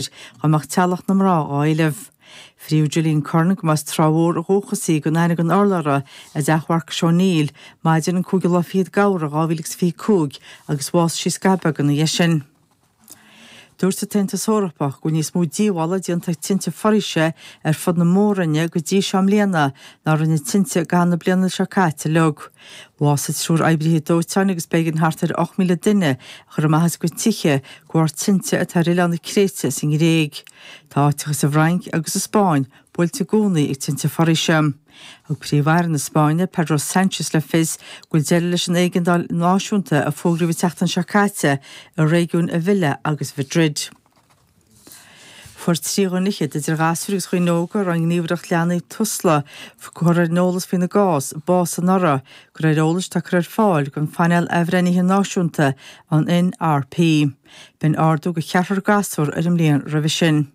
air dá mbeadh teaghlach na mná dhá éileamh. Fríodh Gillian Curran go mba as Trá Mhór ó dhúchas í, gan aithne gan urlabhra i dteach Mharcus O'Neill maidin an 5ú lá fichead d'Fheabhra 2025 agus bhásaigh sí scaitheamh beag ina dhiaidh sin. Dúirt an tAontas Eorpach go bhfuil níos mó díobhála déanta ag tinte foraoise ar fud na Mór-Roinne go dtí seo i mbliana ná a rinne tinte i gcaitheamh na bliana seo caite uilig. Bhásaigh triúr oibrithe dóiteáin agus b'éigean thart ar 8,000 duine a chur amach as a gcuid tithe de bharr tinte atá ar oileán na Créite sa nGréig. Tá áiteacha sa bhFrainc agus sa Spáinn buailte i gcónaí ag tinte foraoise. Thug Príomh-Aire na Spáinne, Pedro Sánchez le fios go bhfuil deireadh leis an éigeandáil náisiúnta a fógraíodh an tseachtain seo caite i réigiúin Ávila agus Mhadrid. Fuair trí dhuine fhichead, idir ghasúir agus dhaoine óga a raibh an Ghníomhaireacht Leanaí, Tusla, curtha ar an eolas faoina gcás, bás anuraidh, de réir eolais atá curtha ar fáil don Phainéal Athbhreithnithe Náisiúnta, an NRP. B'in ardú de cheathrar gasúr ar an mbliain roimhe sin.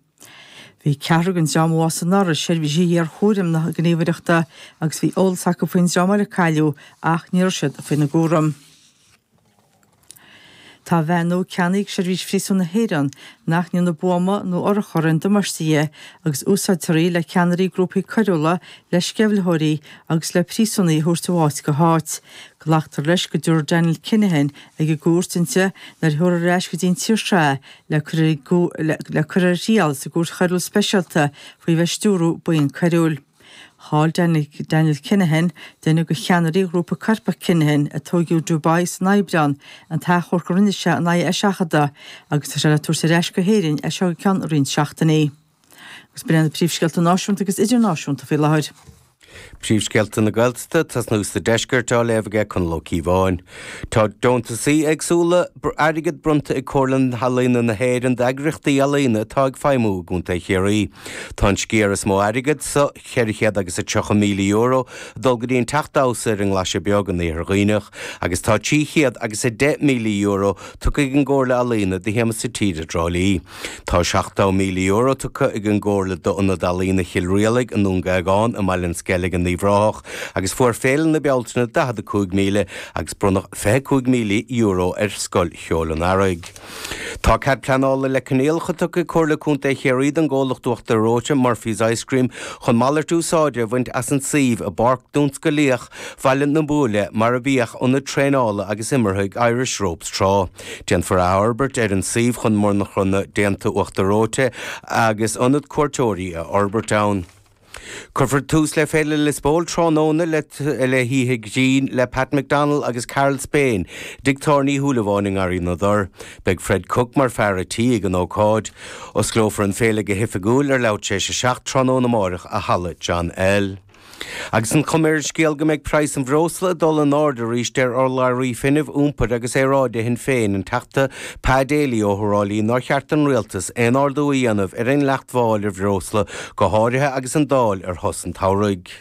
Bhí ceathrar den dream a bhásaigh anuraidh i seirbhísí iarchúraim na Gníomhaireachta agus bhí eolas acu faoin dream eile a cailleadh ach ní raibh siad faoina gcúram. Tá veain nua ceannaithe ag Seirbhís Phríosúin na hÉireann nach ndéanfadh buama nó urchar aon damáiste di agus úsáidfear í le ceannairí grúpaí coiriúla, le sceimhlitheoirí agus le príosúnaigh a thabhairt ó áit go háit. Glactar leis go dtabharfar Daniel Kinahan ag an gcúirt inti nuair a thabharfar ar ais go dtí an tír seo le cur ar thriail sa gCúirt Choiriúil Speisialta faoi bheith ag stiúradh buíon coiriúil. Chaill Daniel Kinahan, duine de cheannairí ghrúpa coirpeach Kinahan, a tóigeadh i Dubai san Aibreán, an t-achomharc a rinne sé in aghaidh a eiseachadadh agus tá sé le tabhairt ar ais go hÉirinn as seo go ceann roinnt seachtainí. Agus b'in iad na príomhscéalta náisiúnta agus idirnáisiúnta faoi láthair. Príomhscéalta na Gaeltachta, tosnú sa Deisceart á léamh aige Conall Ó Cíobháin. Tá deontasaí éagsúla airgid bronnta ag Comhairle Ealaíona na hÉireann d'eagraíochtaí ealaíona atá ag feidhmiú i gContae Chiarraí. Tá an sciar is mó airgid, sa, cheithre chéad agus a tríocha míle euro, ag dul go dtí an Teach Damhsa ar an nGlaise Beag in Iarthar Dhuibhneach agus tá trí chéad agus a deich míle euro tugtha ag an gComhairle Ealaíona do Shiamsa Tíre i dTrá Lí. Tá €70,000 tugtha ag an gComhairle d'Ionad Ealaíona Chill Rialaig i nDún Géagáin i mBaile an Sceilg in Uíbh Ráthach agus fuair Féile na Bealtaine €45,000 agus bronnadh €25,000 ar Scoil Cheoil an Earraigh. Tá cead pleanála le coinníollacha tugtha ag Comhairle Contae Chiarraí don gcomhlacht uachtar reoite Murphy's Ice Cream chun malairt úsáide a bhaint as an suíomh i bPáirc Tionsclaíoch Bhaile na Buaile mar a bhíodh ionad traenála agus imeartha ag Irish Ropes tráth. Déanfar athfhorbairt ar an suíomh chun monarcha nua déanta uachtar reoite agus ionad cuairteoirí a fhorbairt ann. Cuirfear tús le Féile Lios Póil tráthnóna le hOíche Ghrinn le Pat McDonnell agus Karl Spain, i dTigh Tábhairne Uí Shúilleabháin i nGarraí na dTor. Beidh Fred Cooke mar fear a' tí ag an ócáid. Osclófar an féile go hoifigiúil ar leathuair tar éis a seacht tráthnóna amáireach i Halla John L. Agus an chuma ar an scéal go mbeidh praghas an bhreosla ag dul in airde arís deir urlabhraí Fuinnimh, Iompair agus Aeráide Shinn Féin, an Teachta Pa Daly, ó Thrá Lí nár cheart don Rialtas aon ardú a dhéanamh ar an dleacht mháil ar bhreosla, go háirithe agus an Dáil ar shos an tsamhraidh.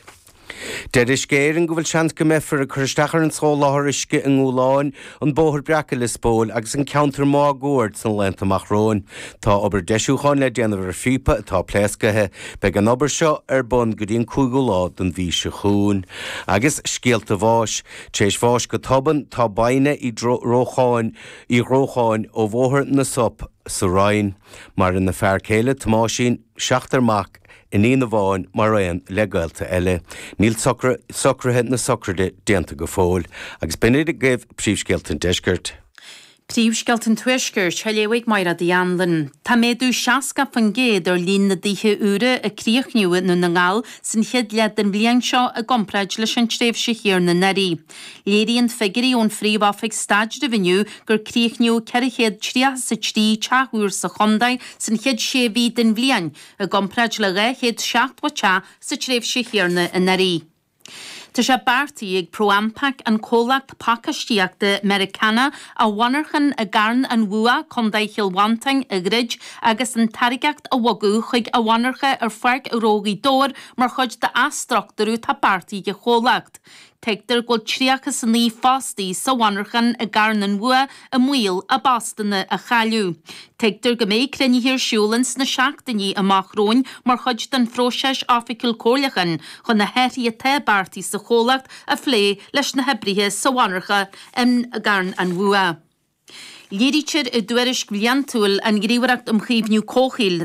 Deir Uisce Éireann go bhfuil seans go mbeifear ag cur isteach ar an soláthar uisce i nGabhlán, an Bóthar Breac i Lios Póil agus an ceantar máguaird sna laethanta amach romhainn. Tá obair deisiúcháin le déanamh ar phíopa atá pléascaithe. Beidh an obair seo ar bun go dtí an cúigiú lá den mhí seo chugainn. Agus scéalta bháis. Tar éis bháis go tobann, tá Baine Uí Chatháin, Ní Dhrócháin, ó Bhóthar na Sop sa Rinn. Maireann a fear céile, Tomáisín. seachtar mac, iníon amháin mar aon le gaolta eile. Níl socruithe na sochraide déanta go fóill, agus b'in iad agaibh Príomhscéalta an Deiscirt. Príomhscéalta an Tuaiscirt, á léamh ag Máire Ní Anluinn. Tá méadú 60% ar líon na dtithe úra a críochnaíodh i nDún na nGall san chéad leath den bhliain seo i gcomparáid leis an tréimhse chéarna anuraidh. Léiríonn figuirí ón Phríomh-Oifig Staidrimh inniu gur críochnaíodh ceithre chéad tríocha is a trí teach úr sa chontae san chéad sé mhí den bhliain, i gcomparáid le dhá chéad seachtó teach sa tréimhse chéarna anuraidh. Tá sé beartaithe ag ProAmpac, an comhlacht pacáistíochta Meiriceánach, a mhonarchan i gCarn an Bhua, Co. Chill Mhantáin, a dhruid agus an táirgeacht a bhogadh chuig a mhonarcha ar Pháirc Ghnó Ghaoth Dobhair mar chuid d'athstruchtúrú atá beartaithe ag an chomhlacht. Tuigtear go bhfuil 39 fostaí sa mhonarchan i gCarn an Bhua i mbaol a bpostanna a chailleadh. Tuigtear go mbeidh cruinnithe ar siúl ins na seachtainí amach romhainn mar chuid den phróiseas oifigiúil comhairliúcháin chun na hathruithe atá beartaithe sa chomhlacht a phlé leis na hoibrithe sa mhonarcha i gCarn an Bhua. Léirítear i dtuairisc bhliantúil an Ghníomhaireacht um Chaomhnú Comhshaoil,